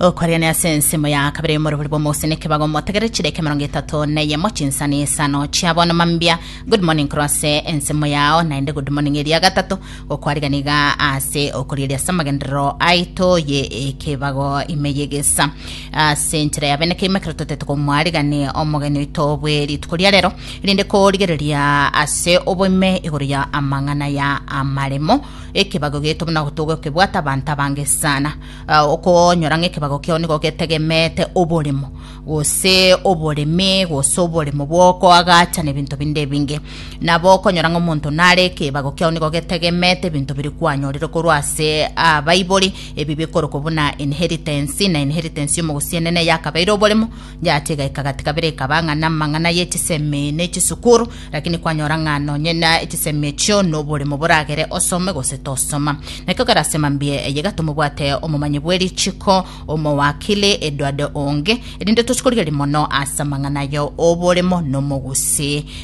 okwariania ase ensemo ya kabere morobori bw'omoseneke bagomotegere chireke mirongo etato na eyemo chinsani isano chiabo noma mbia good morning korwa ase ensemo yao naende good morning eria gatato gokwarigani iga ase okorieria ase amagenderero aito ye ekebago ime yegesa ase enchera ya bene keima ekero totete komwarigani omogeni oito bwe rituko ria rero rinde korigereria ase oboime igoro ya amang'ana ya amaremo Ekebago gieto buna gotoga okebwate abanto abange sana. Okonyora ng'a ekebago kiao nigo getegemeete oboremo, gose oboremi, gose oboremo bw'okoagachana ebinto binde ebinge. Nabo okonyora ng'a omonto nare ekebago kiao nigo getegemeete ebinto biria kwanyorire korwa ase abaibori, ebi bikorokwa buna inheritance, na inheritance y'omogusii enene yakabeire oboremo, Yaacha egaika gati kabere ekaba ng'a namang'ana ye chisemi ne chisukuru, lakini kwanyora ng'a nonye na echisemi echio noboremo boragere osome gose tosoma. Nakio kerasema mbuya eye gatomobwate omomanyi bwe richiko, omowakili, edward onge, erinde tochi korigereria mono ase amang'ana aye oboremo nomogusi.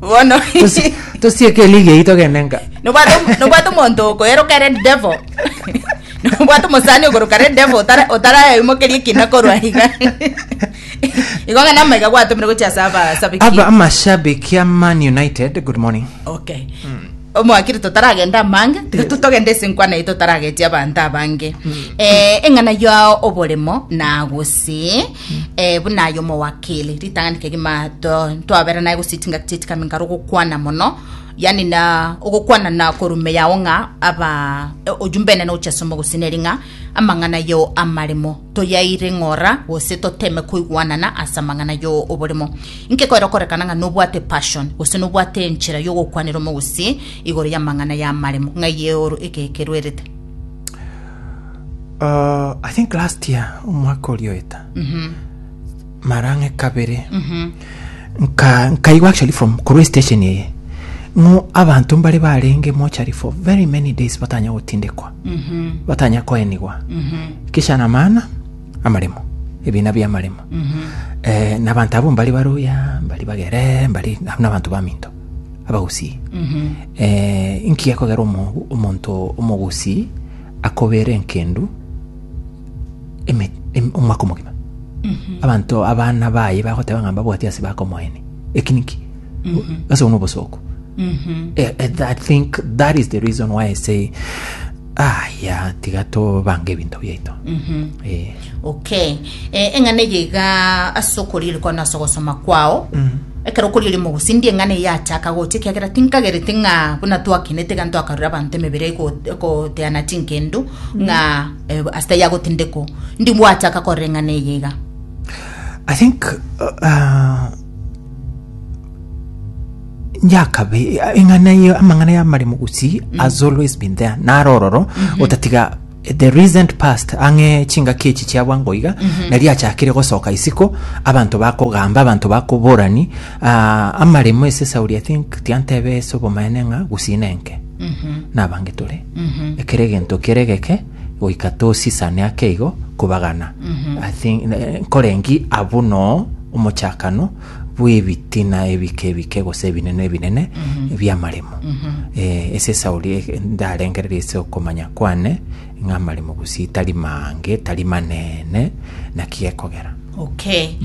bono Tosi- tosieke eligi eyio togende nka nobwate nobwate omonto okoeroka ere devil nobwate omosani okoroka ere devil otara- otaraeimokeria ekina korwa iga igo ng'a namaiga gwatomire gochia ase aba abasabiki amashabiki ya man united good morning okay omwakire totaragenda amange tiga tu- togende ase enkwana eye totaragetie abanto abange Eh, eng'ana ya oboremo na gose eh, buna aye omowakili ritang'ani kegima to- twabera naye gositinga gitieti kami nkaro gokwana mono yani na ogokwana na korume yao ng'a aba eh, ojumbe enene gochia somo gosineri ng'a amang'ana yo amaremo toyaire ng'ora gose toteme koigwanana ase amang'ana yo oboremo inke koera okorekana ng'a nobwate passion gose nobwate enchera yogokwanera omogosi igoro y'amang'ana y'amaremo ng'ai eoro eke ekeruerete I think last year omwaka oria oeta mara ng'e kabere nka nkaigwa actually from korwa station eye ng'o abanto mbare barenge mochari for very many days batanya gotindekwa batanya koenigwa kisha na maana amaremo ebina bia amaremo eh, na abanto abo mbari baruya mbari bagere mbari na abanto baminto abagusii eh, inki gekogera omo- omonto omogusii akobeera enkendu eme- em- omwaka omogima abanto abana baye bagoteba ng'a mbabwati ase bakomoeni eki niki ase obwo nobosooku Eh, eh, i think that is the reason why i say ah ya tiga tobange ebinto biaito Eh. Okay. Eh, eng'ana eye iga ase okoriiri kwao na ase ogosoma kwao ekero okoriiri mogusi ndi eng'ana eye yachaka gocha ekiagera tinkagereti ng'a buna twakinete iga ntwakarure abanto emebere ego- egoteana chinkendu ng'a eh, ase taiyo agotindekwa ndi bwachaka korora eng'ana eye iga I think uh, yakabe eng'ana ye amang'ana yamare mogusi has always been there naro ororo otatiga In the recent past, ang'e chingaki echi chiabwa ngoiga, na riachakire gosoka isiko, abanto bakogamba, abanto bakoborani, ah, amaremo ase Sauli, I think, tiantebe ase obomaene ng'a gusina enke. Nabange tore. Ekero egento kere geke, goika tosisane ake igo, kobagana. I think, eh, nkorengi abwo noo omochakano, bw'ebitina ebike ebike gose ebinene ebinene bi'amaremo. Eh, ase Sauli eh, ndarengereria ase okomanya kwane ng'a amaremo bosio tari mange, tari manene, naki gekogera. Okay.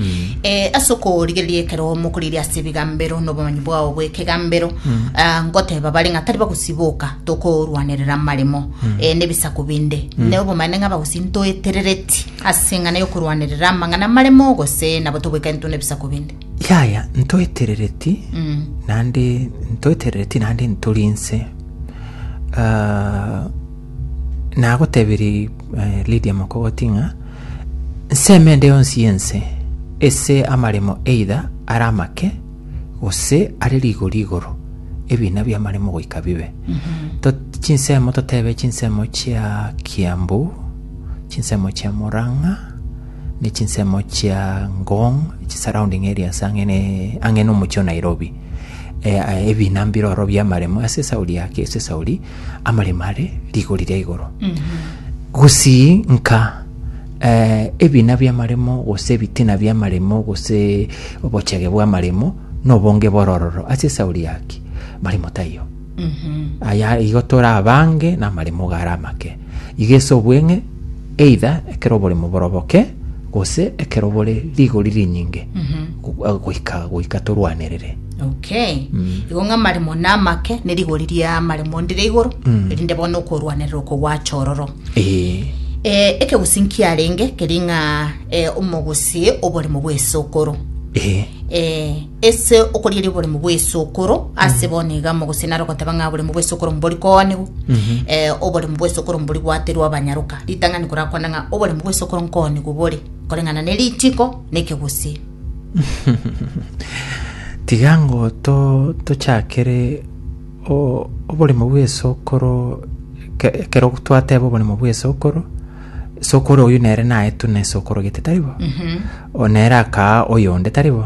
Eh, ase okorigereria ekero mokorigereria ase ebigambero na obomanyi bwao bw'ekegambero ah, ngoteba bare ng'a tari bagosiboka tokorwanerera amaremo eh, na ebisaku binde na obomanene ng'a bagosintoeterereti As'eng'ana y'okorwanerera amang'ana amaremo, gose nabo togoika intwe nebisaku binde. Yaya, ntoeterereti naende ntoeterereti naende ntori inse. Ah, nagotebirie eh, Lydia Mokogoti ng'a nseme ende yonsi y'ense ase amaremo either are amake gose are rigori igoro ebiina bi'amaremo goika bibe. To- chinsemo totebe chinsemo chia Kiambu, chinsemo chia Murang'a, ne chinsemo chia Ngong' chi surrounding areas ang'e ne ang'e na omochie o Nairobi. Eh, ah, ebina mbire oro bia amaremo ase esauri yake ase esauri amaremo are rigori ria igoro gusii nka eh, ebina bia amaremo gose ebitina bia amaremo gose obochege bwa amaremo nobonge borororo ase esauri yake maremo taiyo Aya igo tore abange namaremogwe are amake, iga ase obweng'e, either ekero oboremo boroboke, gose ekero bore rigori rinyinge, go- eh, goika goika torwanerere. okay igo ng'a amaremo na amake ne rigori ria amaremo ndire igoro erinde bono okorwanerera oko gwacha ororo Eh, Eh, ekegusi nkiarenge keri ng'a eh, omogusi oboremo bw'esokoro eh, Eh, Ase okorieria oboremu bw'esokoro, ase bono iga mogosina are ogoteba ng'a oboremu bw'esokoro mbori koonigwa, eh, oboremu bw'esokoro mbori gwaterwa abanyaroka. Ritang'ani korakwane ng'a oboremu bw'esokoro nkoonigwa bore, koreng'ana ne ritiiko na ekegusii. tiga ngo to tochakere o- oboremo bw'esokoro ke- ekero twateba oboremo bw'esokoro sokoro oyu nere naetwe ne sokoro gete taribo o nere akaa oyonde taribo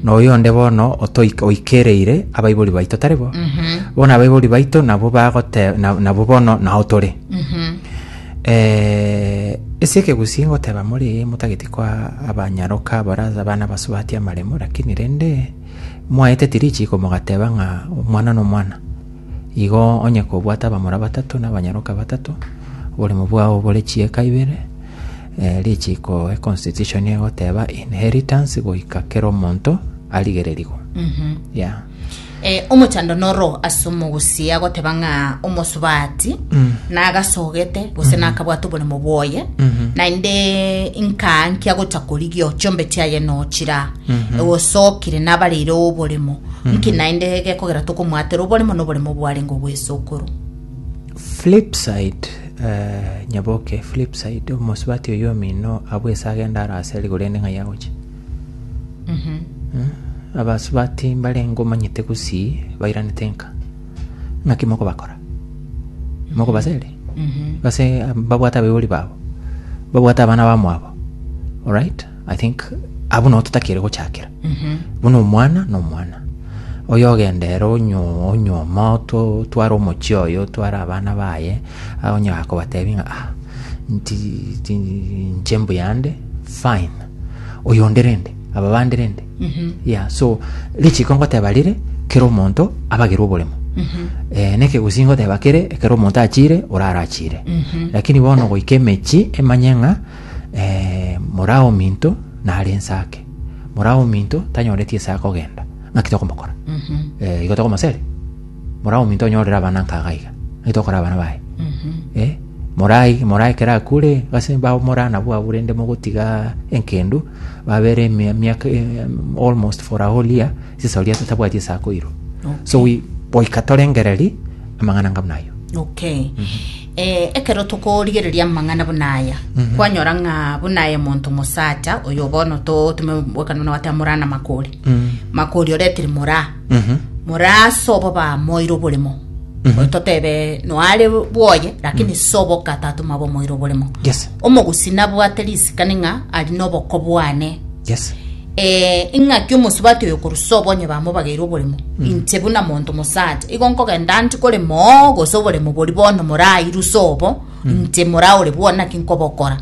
na oyonde bono otoik- oikereire abaibori baito taribo bono abaibori baito nabo bagote na- nabo bono nao tore Eh, ase ekegusii ngoteba more motageti kwa abanyaroka baraza abana basubati amaremo lakini rende mwaete tirichi komogateba ng'a omwana nomwana Igo onye kobwate abamura batato na abanyaroka batato, oboremo bwao bore chieka ibere, richiko econstitution egoteba inheritance goika kera omonto arigererigwe. Yeah. Eh, omochando noro ase omogusia agoteba ng'a omosubati nagasogete gose nakabwate oboremo bwoye naende inkaa nkiagocha korigia chombe chiaye nochira egosokire nabareire oboremo nki naende gekogera tokomoatera oboremo na oboremo bwarenge obw'esokoro Flipside, eh, nyaboke, flipside, omosubati oyo omino abwo ase agenda ara ase rigo rende ng'ai agoche. Eh, Abasubati mbarenge omanyete gusi bairanete nka. Ng'aki mokobakora. Mokobasere. Base ah, babwate abaibori babo. Babwate abana bamwabo. Alright? I think abwo nabo totakeire gochakera buna omwana na omwana oyo ogendere onyo- onyoma oto- tware omochie oyo tware abana baye ah, onye akobatebi ng'a ah, nti- ti- nche mbuyande fine oyo onde rende aba bande rende yeah so richiko ngoteba rire kera omonto abagerwe oboremo eh, nekegusii ngoteba kere ekero omonto achire orara achire lakini bono goika emechi emanye ng'a eh, mora ominto nare ense ake mora ominto tanyoreti ase akogenda ng'aki tokomokora Eh, igo tokomosere mora ominto onyorere abana nkaga iga ng'aki tokora abana baye Eh, morai morai kera akure gase bao mora nabwo abwo rende mogotiga enkendu babere emia- miaka eh, almost for a whole year sisori ase tabwati ase akoirwa so we- goika torengereri amang'ana ngabuna ayo okay Ee, ekero tokorigereria amang'ana buna aya, kwanyora ng'a buna aye monto mosacha oyo bono totume bwekanwa na gwate moraa na makori. Makori oretire moraa. Moraa ase obo bamoire oboremo. Totebe noare bwoye, lakini sobo katatuma bomoire oboremo. Yes. Omogusii nabwate risikani ng'a ari noboko bwane. Yes. Ee, ing'aki omosubati oyo korwa sobo onye bamobageire oboremo, inche buna monto mosacha, igo nkogenda nti korema oo, gose oboremo boria bono morairwe sobo, inche moraa ore bwoo naki nkobokora.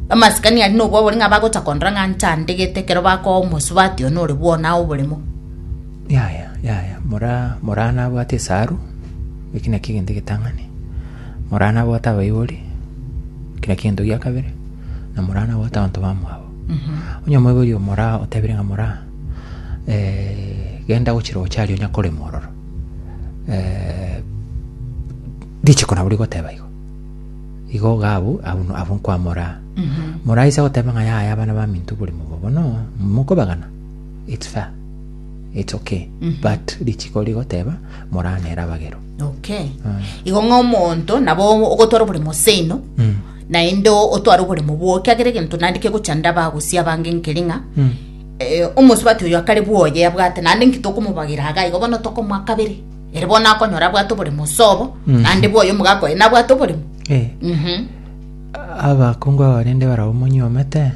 Amasikani aria nobwo abori ng'a bagocha kondora ng'a nchandegete ekero bakoa omosubati oyo nore bwoo naye oboremo. Yaya, yaya, moraa moraa nabwate esaru, eki nakio egento egetang'ani, moraa nabwate abaibori, eki nakio egento gia kabere, na moraa nabwate abanto bamwabo. Onye omoibori omoraa otebire ng'a moraa, genda gochia roche aria onya korema ororo, richiko nabo rigoteba igo, igo iga abwo abwo no abwo nkwa moraa. Moraa aise goteba ng'a yaya abana baminto oborimo obo bono mokobegana, it's fair, it's okay, but richiko rigoteba moraa nere abagerwe. Okay. Igo ng'a omonto nabo ogotwara oboremo seino. naende otware oboremo bwao, ekiagera egento naende kegocha ndaba gose abange nkere ng'a eh, omosubati oyo akare bwoye abwate naende nki tokomobagira iga igo bono tokomoa kabere ere bono akonyora abwate oboremo ase obo Mm. naende bwoye omogaka oye nabwate oboremo Eh, Mhm. abakungu aba barende barabwo monyuomete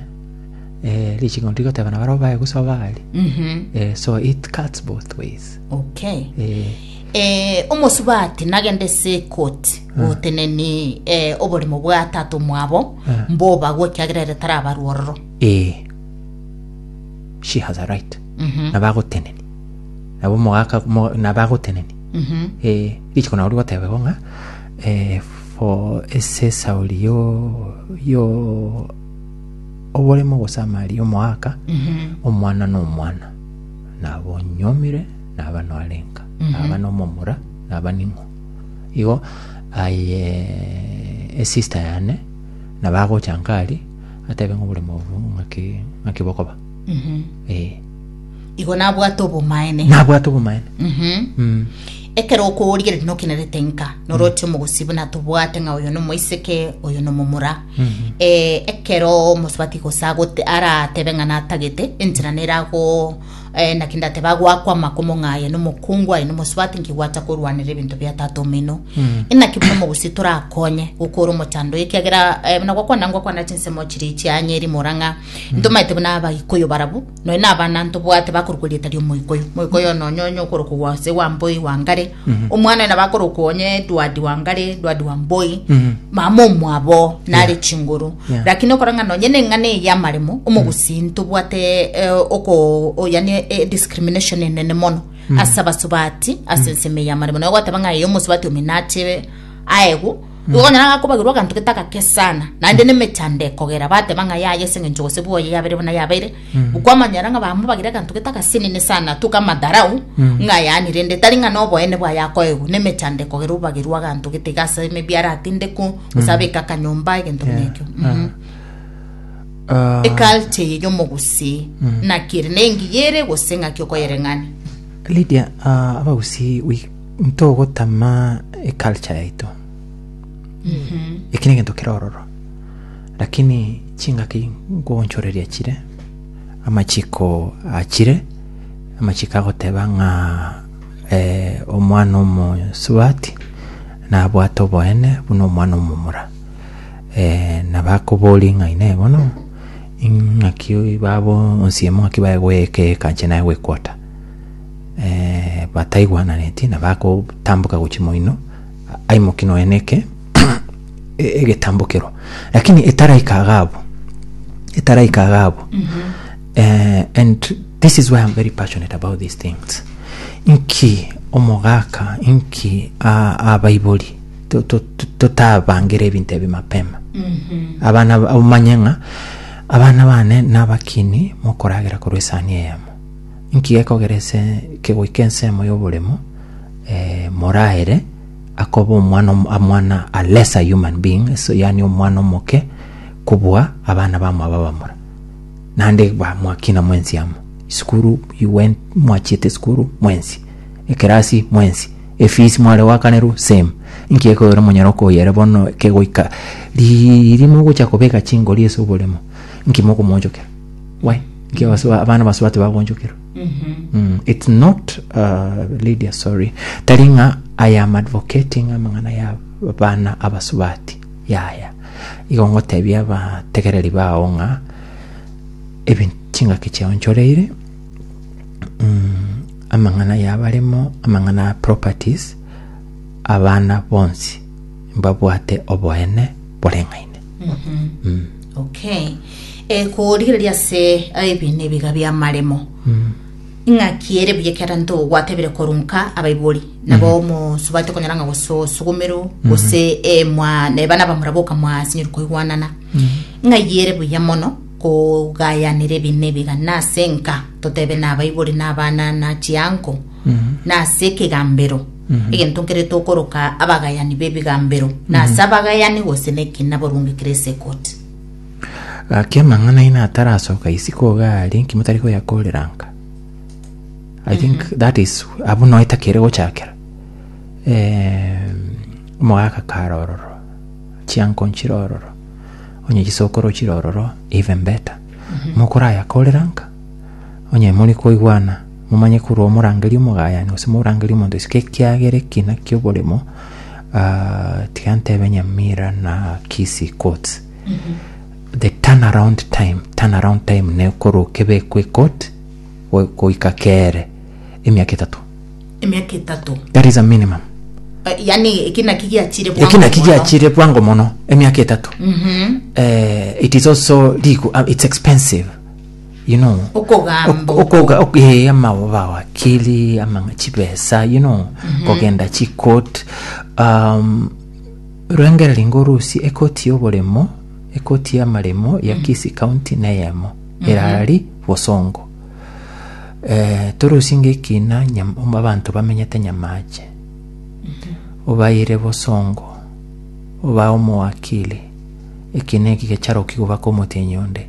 eh, richiko ntigoteba na barabwo baye gosoba aria Mhm. eh, so it cuts both ways okay eh, Ee, omosubati nagende ase ekoti goteneni eh, oborimo bwa tata omwabo mbobagwe ekiagera ere tarabarwa ororo Ee. She has a right. Nabagoteneni. Nabo mogaka mo- nabagoteneni. Eh, richiko nao rigotebegwa ng'a eh, for esesa ori yo yo oboremo gose amari omoaka omwana na omwana. nabonyuomire, naba noarenka, naba nomomura, naba ning'o. Igo aye esista yane nabo agocha nkari atebe ng'a oboremo obo ng'aki ng'aki bokoba ee igo nabwate obomaene nabwate obomaene Mhm. Mm. ekero okoorigereri nokenerete nka noroche omogusii buna tobwate ng'a oyo nomoiseke oyo nomomura Eh, ekero omosubati gose agote aratebe ng'a natagete enchera nerago eh, naki ndateba agwakwa amakomo ng'a aye nomokungu aye nomosubati nkigwacha korwanera ebinto bia tata omino Mm. inaki buna omogusi torakonye gokora omochando oyo ekiagera eh, buna gwakwana ngwakwana chinsemo chiri chianyeri morang'a ntomaete buna abagikuyu barabwo Nonya nabana ntobwate bakorokwa erieta ri'omoika oyo, moika oyo nonya onye okorokwa ase wa mboi wa ngare, omwana oyo nabakorokwa onye Edward wa ngare, Edward wa mboi, mama omwabo nare chinguru. Yeah. Lakini okora ng'a nonya neng'ana eye y'amaremo, omogusii ntobwate eh, oko o- yani eh, discrimination enene mono ase abasubati ase ensemo eye y'amaremo. Nonya gwateba ng'a eye omosubati ominachire aegwe Igo onye nagakobagerwa aganto getagake sana, naende nemechando ekogera, bateba ng'a yaya ase eng'encho gose bwoye yabere buna yabeire, kwamanyera ng'a bambe bagire aganto getagasenene sana, tuka amadharau, ng'a yaani rende tari ng'a noboene bwaye akoegwa, nemechando ekogera obagerwe aganto getiga ase maybe aratinde ko, gose abeke akanyomba, egento buna ekio. Mhm. Ah, eculture eye y'omogusii naki ere nengiya ere gose ng'aki okoyereng'ania Lydia, ah, abagusii wi- ntogotama eculture yaito eki negento kere ororo lakini chingaki nkogonchoreria chire amachiko achire amachiko agoteba ng'a eh, omwana omosubati nabwate oboene buna omwana omomura eh, na bakobori ng'a inee bono ing'aki babo onsiemo ng'aki baye goyeka yeka inche naye gwekwota bataigwananetie na bagotamboka gochia moino, aimoke nonya neke egetambokero. Lakini etaraika iga abwo, etaraika iga abwo, and this is why I'm very passionate about these things, inki omogaka, inki abaibori totabangere ebinto ebi mapema. Abana omanye ng'a abana bane nabakini mokoragera korwa esani eyemo. Inki gekogera ase ekegoika ensemo y'oboremu moraere akoba omwana amwana a lesser human being so yaani omwana omoke kobua abana bamwabo abamura naende ba mwakina mwensi amo isukuru you went mwachiete isukuru mwensi ekerasi mwensi efees mware goakanerwa same inki gekogera monyare okoyera bono ekegoika riiri mogocha kobeka chingori ase oboremu inki mokomonchokera Why? Nki abaswa- abana baswa tibagonchokerwa? Mm, it's not uh, lydia sorry tari ng'a i am advocating amang'ana ya bana abasubati yaya igo ngotebia abategereri bao ng'a ebin chingaki chiao nchoreire mm, amang'ana yabaremo amang'ana ya properties abana bonsi mbabwate oboene boreng'aine okay eh, korigereria ase ebi na ebiga bi'amaremo ing'aki ere buya ekiagera nto gwatebire korunka abaibori nabo mosubate konyora ng'a gose osugumero gose eh, mwa neba nabamura boka mwasinyori koigwanana ng'ai ere buya mono kogayanera ebi na ebiga nase enka totebe na abaibori na abana na chianko nase ekegambero egento nkere tokoroka abagayani b'ebigambero, na ase abagayani gose neki naborungekire ase ekoti. Gaki amang'ana aino atarasoka isiko iga aria, inki motari koyakorera nka? I think that is abwo noe takere gochakera. Eh, omogaka kare ororo, chianko nchire ororo, onye chisokoro ochire ororo, even better. Mokorayakorera nka, onye mori koigwana Momanye korwa omorangeria omogayani gose morangeria omonto isiko ekiagera ekina ki'oboremo, ah, tiga ntebe Nyamira na Kisii courts. The turnaround time, turnaround time ne korwa okebekwa ecourt go- goika kere emiaka etato. emiaka etato That is a minimum. Eh, yaani eki naki giachire bwango Eki naki mono. giachire bwango mono emiaka etato. Eh, it is also legal, ah, it's expensive. you know Okogamba ok- okoga ok- eh, amawakili amang'a chibesa you know kogenda chikot um, rwengera ringo rusi ekoti y'oboremo ekoti y'amaremo ya kisi county neyemo erari bosongo eh, torusi ngekina nyam- abanto bamenyete nyamache obaire bosongo oba omowakili ekina eki gecharoki gobaka omotienyi onde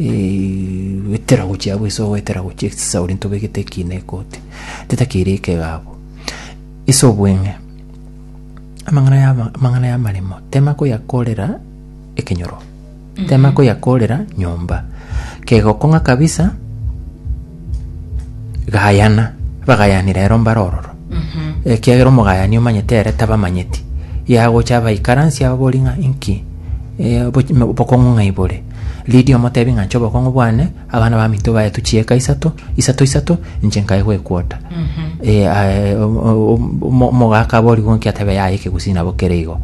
Eterago chiabo ase ogoeterago chia ekisauri ntobegete ekiina ekoti, titakeire ekegabo ase obweng'e. Amang'ana ya amang'ana y'amaremo tema koyakorera ekenyoro, tema koyakorera nyomba, kegokong'a kabisa. gayana, bagayani rero mbare ororo, ekiagera omogayani omanyete ere tabamanyeti, yagocha abaikaransie aba bori ng'a inki eh, oboch- mo- obokong'u ng'a ibore, ridia omotebi ng'a inche obokong'u bwane, abana baminto baetwe chieka isato, isato isato, inche nkae gwekwota. Eh, aye, o- o- o- omo- omogaka aba origwe nki atebe yaya ekegusii nabo kere igo,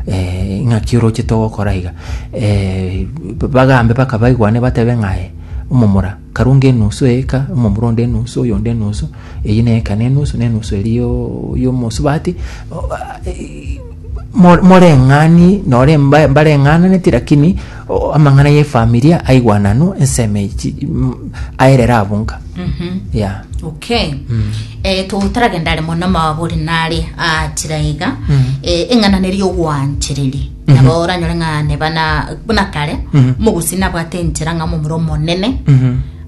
eh, ng'aki orochete ogokora iga, eh, bagambe baka baigwane batebe ng'a aye, omomura. Karunga enusu eeka, omomura onde enusu, oyonde enusu, eyio ne eeka ne enusu, ne enusu eria y'omosubati. Moreng'ani nore mbareng'ananeti lakini amang'ana y'efamilia aigwananu ensemo echi aerere abo nka mhm. ya okay mm. eh, totaragenda are mono mabore nare achira ah, iga mm. eh, eng'ananeri ogwanchereri Nabo oranyore ng'a neba na buna kare omogusi nabwate enchera ng'a omomura omonene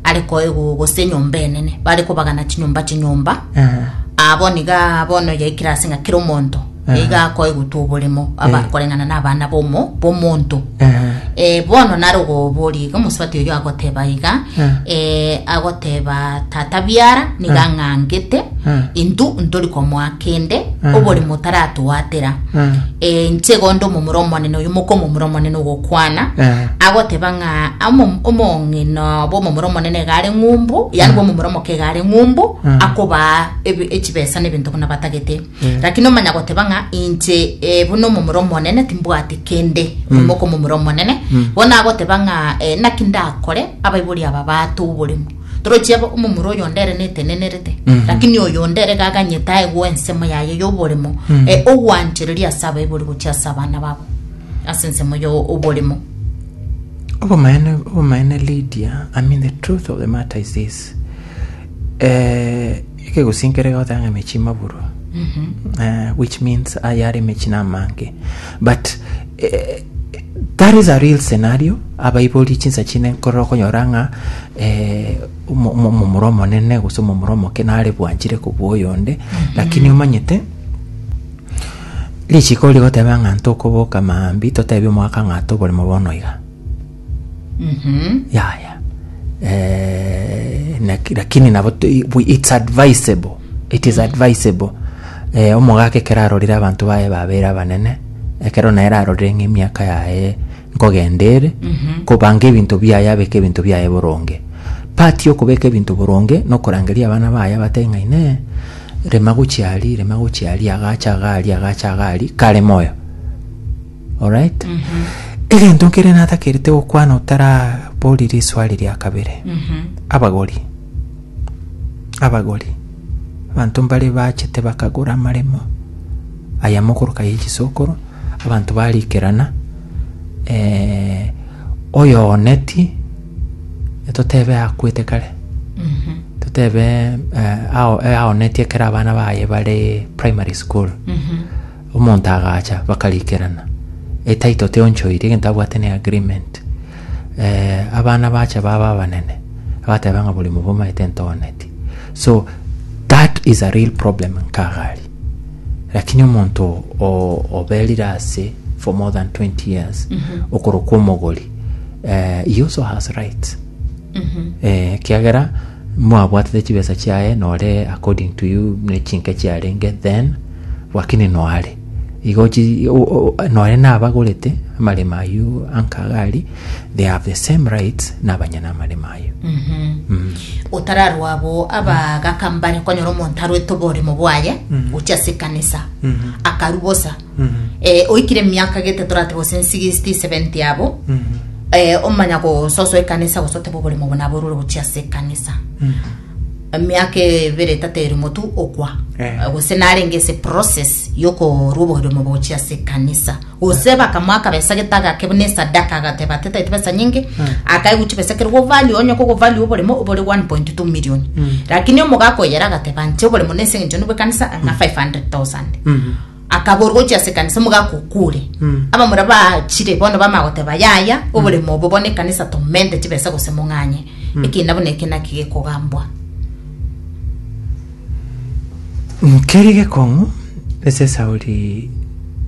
are koegwa gose enyomba enene bare kobagana chinyomba chinyomba abo niga bono yaikire ase ng'a kera omonto iga akoegutwa oboremo aba- koreng'ana na abana bomo bomonto Eh, bono nare ogoboria iga omosubati oyo agoteba iga eh, agoteba tata biara niga ng'angete intu ntori komoa kende oboremo taratwatera Eh, Eh, inche igo nde omomura omonene oyo moka omomura omonene ogokwana eh, agoteba ng'a omo- omong'ina bw'omomura omonene iga are ng'umbu yani bw'omomura omoke iga are ng'umbu Mm. akobaa ebi- echibesa n'ebinto buna batagete Mm. lakini omanya goteba ng'a inche eh, buna omomura omonene timbwati kende Mm. moka omomura omonene Mm. bono agoteba ng'a eh, naki ndakore abaibori aba batoo oboremu Toroche aba omomura oyonde ere netenenerete, lakini oyonde ere gaganyete aegwe ensemo yaye y'oboremo, e, ogwanchereria ase abaibori gochia ase abana babo, ase ensemo ya oboremo. Obomaene obomaene Lydia I mean the truth of the matter is this eh, Ekegusii nkere goteba ng'a emechie imaburu eh, which means aye are emechie namange but eh, that is a real scenario abaibori chinsa chine nkorora okonyora ng'a eh, omo- omo- omomura omonene gose omomura omoke nare bwanchire kobua oyonde lakini omanyete richiko rigoteba ng'a ntokoboka maambi totebie omogaka ng'a toboremo bono iga yaya eh, laki- lakini nabo tu- we- it's advisable it is advisable eh, omogaka ekero arorire abanto baye babere abanene ekero naye ararorire ng'a emiaka yaye nkogenda ere kobanga ebinto biaye abeke ebinto biaye boronge part yokobeka ebinto boronge nokorangeria abana baye abatebe ng'a ine rema gochia aria rema gochia aria agacha iga aria agacha iga aria kare moyo Alright? Egento nkere natakerete gokwana otarabori riswari ria kabere. Abagori. Abagori. Abanto mbare bachete bakagora amaremo aya mokoroka ye chisokoro, abanto barikerana eh, oyooneti totebe akwete kare totebe eh, ao- eh, aoneti ekero abana baye bare primary school Omonto agacha bakarikerana, etaito teonchoiri egento abwate ne agreement. Eh, abana bacha baba abanene, agateba ng'a bori mobomaete ntooneti. So, that is a real problem nkagari. Lakini omonto o- oberire ase for more than 20 years, okorokwa omogori, eh, he also has rights. Eh, kiagera mwabwatete chibesa chiaye nore according to you ne chinke chiarenge then Gwakene noare igo chi- o- o- o- noare nabagorete amaremo ayio anka iga aria they have the same rights nabanya namaremo ayio Mm. otararwa abo abagaka mbare konyora omonto arwete oboremo bwaye Mhm. gochia ase ekanisa Mhm. akaru bosa Mhm. Eh, oikire emiaka gete torate gose 60 70 abo Mhm. eh, omanya gososoa ekanisa gose oteba oboremo obo naborure gochia ase ekanisa Mhm. emiaka ebere etata ere motu okwa Eh. gose narenge ase process yokorwa obogima bogochia ase ekanisa gose bakamwa akabesa getagake buna esadaka agateba ati taete besa nyinge akaigwa chibesa kere govalue onye kogovalue oboremo obore 1.2 million lakini omoga akoyera agateba nche oboremo nese eng'encho nibo ekanisa ng'a 500000 Akaborwa gochia ase ekanisa mogakokure. Abamura bachire bono bamanya goteba, Yaya, oboremo obo bono ekanisa tomente chibesa gose mong'anye. Ekiina buna eke naki gekogambwa. Nkeri gekong'u ase esauri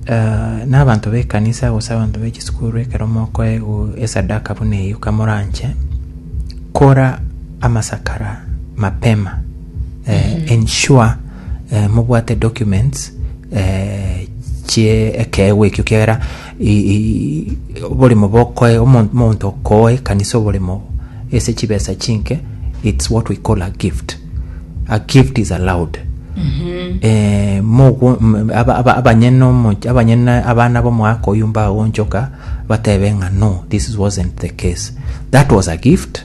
eh, n'abanto b'ekanisa gose abanto be chisukuru ekero mokoegwa esadaka buna eyio kamoranche kora amasakara mapema eh, ensure eh, mobwate documents eh, chie ekeegwa ekio kiagera i- i- oborimo bokoe omo- omonto okoe kanisa oborimo ase chibesa chinke it's what we call a gift a gift is allowed eh, mogo- m- aba- aba- abanyene omo- abanyene abana bomwaka oyu mbagonchoka batebe ng'a no this wasn't the case that was a gift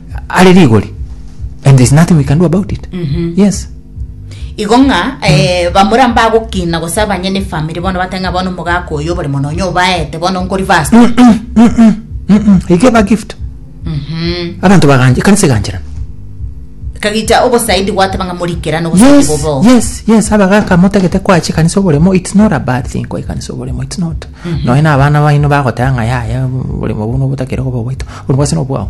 are rigori and there's nothing we can do about it yes igo ng'a eh, bamura mbagokina gose abanye ne family bono bateng'a bono omogaka oyo oboremo nonya obaete bono nkori fast he gave a gift abantu baganje ekanisa egancherana kagicha obosaidi gwateba ng'a morikerane obosaidi yes bobo yes yes abagaka motagete kwachi kanisa oboremo it's not a bad thing kwa kanisa oboremo it's not noe na abana baino bagotanga yaya oboremo buno botakere koba bwaito oboremo bwase nobwao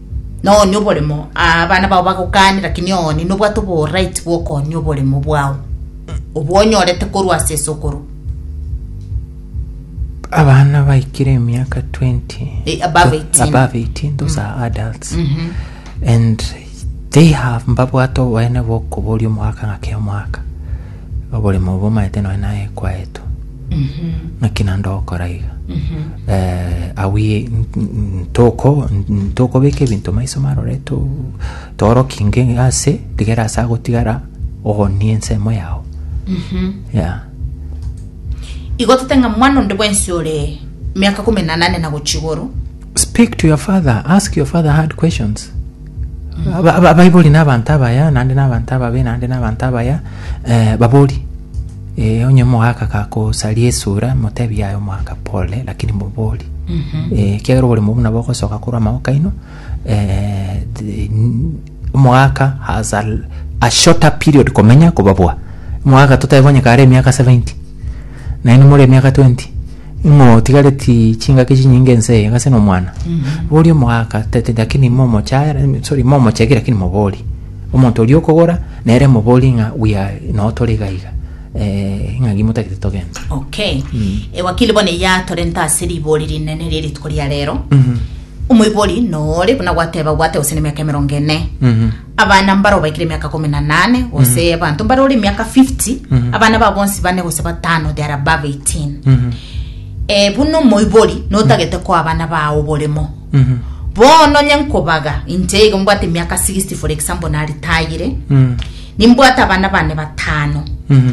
Nonya oboremo, aa, abana bao bagokaanire, lakini ooni nobwate oboraiti bw'okoonia oboremo bwao, obwo onyorete korwa ase esokoro. abana baikire emiaka 20 Eh, above 18. above 18 those are adults and they have mbabwate oboene bokoboria omwaka ng'ake omwaka Oborimo obo omaete nonya naye kwaeto. Naki naende ogokora iga. Eh, are we n- n- toko- n- tokobeka ebinto maiso marore to- torokie nge ase tigere ase agotigara ogonie ensemo yao yeah. igo totenga mwana onde bwensi ore miaka kumi na nane na gochia igoro Speak to your father. Ask your father hard questions. Aba- aba- abaibori n'abanto abaya naende n'abanto ababe naende n'abanto abaya eh, babori eh, onye omogaka gakosaria esura motebi yaye omogaka pole lakini mobori eh, kiagera oboremo buna bogosoka korwa amaboko aino eh, the- n- omogaka has a, l- a shorter period komenya kobabua omogaka totaebonye kare emiaka 70 naende more emiaka 20 Imotigareti chingaki chinyinge ense eye gase nomwana bori omogaka tete lakini momochare sorry momochegi lakini mobori omonto oria okogora nere mobori ng'a we are noo tore iga iga eh, ng'a gimotagete togende okay ewakili bono eyatorenta ase rigori rinene rie rituko ria rero omoibori nore buna gwateba gwate gose na emiaka emerongo ene Mhm. Abana mbare obaikire emiaka komi na nane gose abanto mbare ore emiaka 50 abana ba bonsi bane gose batano they are above 18 Mhm. eh, buna omoibori notagete koa abana bao oboremo Mhm. bono onye nkobaga inche igo mbwate emiaka 60 for example naritayire Mhm. nimbwate abana bane batano Mhm.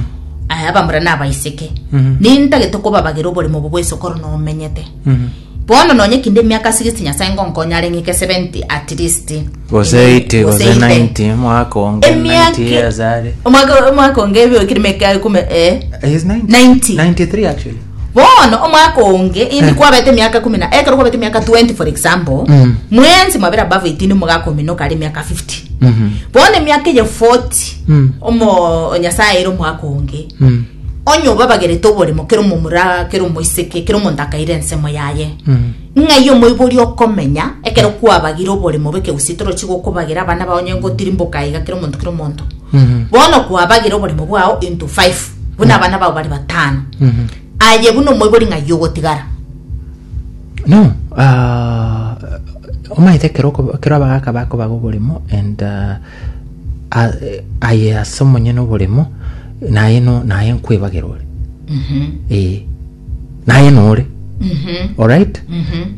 eh, abamura nabaiseke Mhm. nintagete kobabagera oboremo obo bwesokoro nomenyete Mhm. Bono nonye kinde emiaka sixty Nyasae ngonkonya are ng'ike seventy at least. Gose eighty, gose ninety, omwaka onge ninety years are. Omwaka omwaka onge ebe okire meka ekume eh. He's 90. 90. 93 actually. Bono omwaka onge indi kwabete emiaka kumi na ekero kwabete emiaka 20 for example Mm. mwensi mwabere above 18 mogakominoka ari emiaka 50 Mhm. bono emiaka eye 40 Mm. omo nyasaye ere omwaka onge Mm. onye obabagerete oboremo kera omomura kera omoiseke kera omonto akaira ensemo yaye ng'ai omoibori okomenya ekero kwabagire oboremo bw'ekegusii torochi gokobagera abana bao onye ngotirimboka iga kera omonto kera omonto bono kwabagire oboremo bwao into five buna abana bao bare batano aye buna omoibori ng'ai ogotigara No, ah, omaete ekero oko- ekero abagaka bakobaga oboremo and ah, A- eh, aye ase omonyene oboremo naye no naye nkwebagera ore ee naye nore alright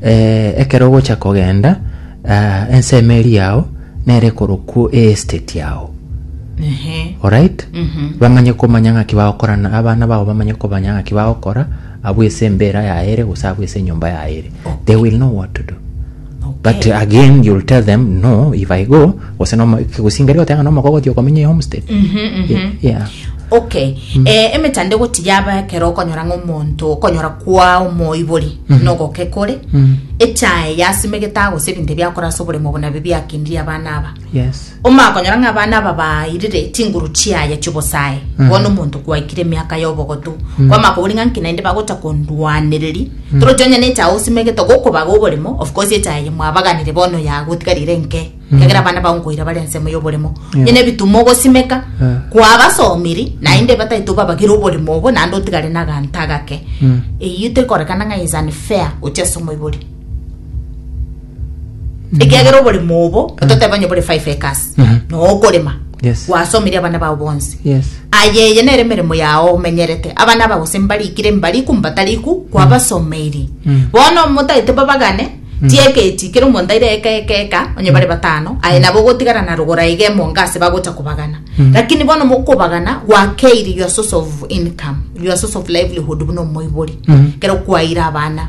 eh, ekero ogocha kogenda ah, ensemo eri yao nere korokwo estate yao alright bamanye komanya ng'aki bagokorana abana bao bamanye komanya ng'aki bagokora abwese embera yaere gose abwese enyomba yaere they will know what to do But again you'll tell them no if I go gose no kigusingeri goteba ng'a nomoko ogotia okomenya homestead yeah okay eh, emetanda egoti yaba ekero okonyora ng'a omonto okonyora kwa omoibori nogoke kore echae yasimegete agose ebinto ebiakora ase oboremo obo nabi biakindirie abana aba Yes. Omakonyora ng'a abana aba bairire chinguru chiaye chiobosae bono omonto kwaikire emiaka y'obogotu kwamaka kobori ng'a nki naende bagocha kondwanereri toroche onye ne echae osimegete gokobaga oboremo of course echae eye mwabaganire bono yagotigarire enke ekero abana bao nkoira bare ensemo y'oboremo onye ne ebitumo ogosimeka Eh. kwabasomiri naende bataete obabagere oboremo obo naende otigare na aganto agake eyio tekorekana ng'a is unfair gochia ase omoibori ekiagera oboremo obo toteba onye bore five acres nokorema Yes. gwasomirie abana bao bonsi Yes. aye eye nere emeremo yao omenyerete abana aba gose mbarikire mbariku mbatariku kwabasomeiri bono motaete babagane tieketi kera omonto aire eka eka eka onye bare batano aye nabo ogotigara na rogora iga emonga ase bagocha kobagana lakini bono mokobagana gwakeire your source of income your source of livelihood buna omoibori kero kwaire abana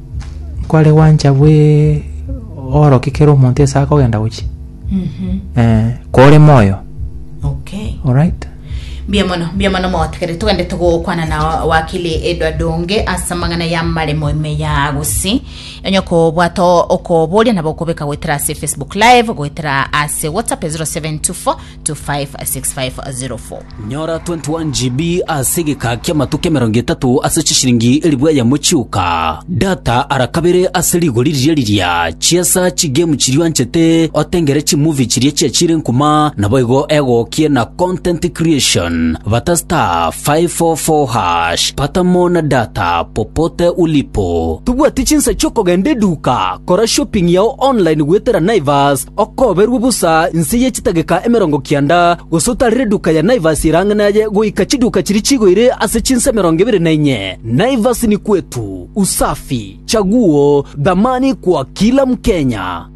kware gwancha bwe orokia kera omonto ase akogenda gochia eh, kore moyo okay alright mbuya mono mbuya mono mogotegerere togende togokwana na wakili edwa donge ase amang'ana ya maremo ime ya gosi onye kobwata okoboria nabo okobeka goetera ase facebook live goetera ase whatsapp 0724 256504. Nyora 21GB ase egeka ki'amatuko emerongo etato ase chishiringi elifu eyemo chioka. Data ara kabere ase rigori riria riria. Chiesa chigame chiria oanchete otengere chimovie chiria chiachire nkuma naboigo egokie na content creation. Bata star 544 hash pata more na data popote ulipo. Tobwati chinsa chi'okogenda eduka, kora shopping yao online goetera Naivas Okoberwe bosa inse ye chitageka emerongo kianda, gose otare reduka ya Naivasi erang'ani aye goika chiduka chiria chigoire ase chinsa emerongo ebere na inye. Naivasi ni kwetu, usafi, chaguo, thamani kwa kila Mkenya.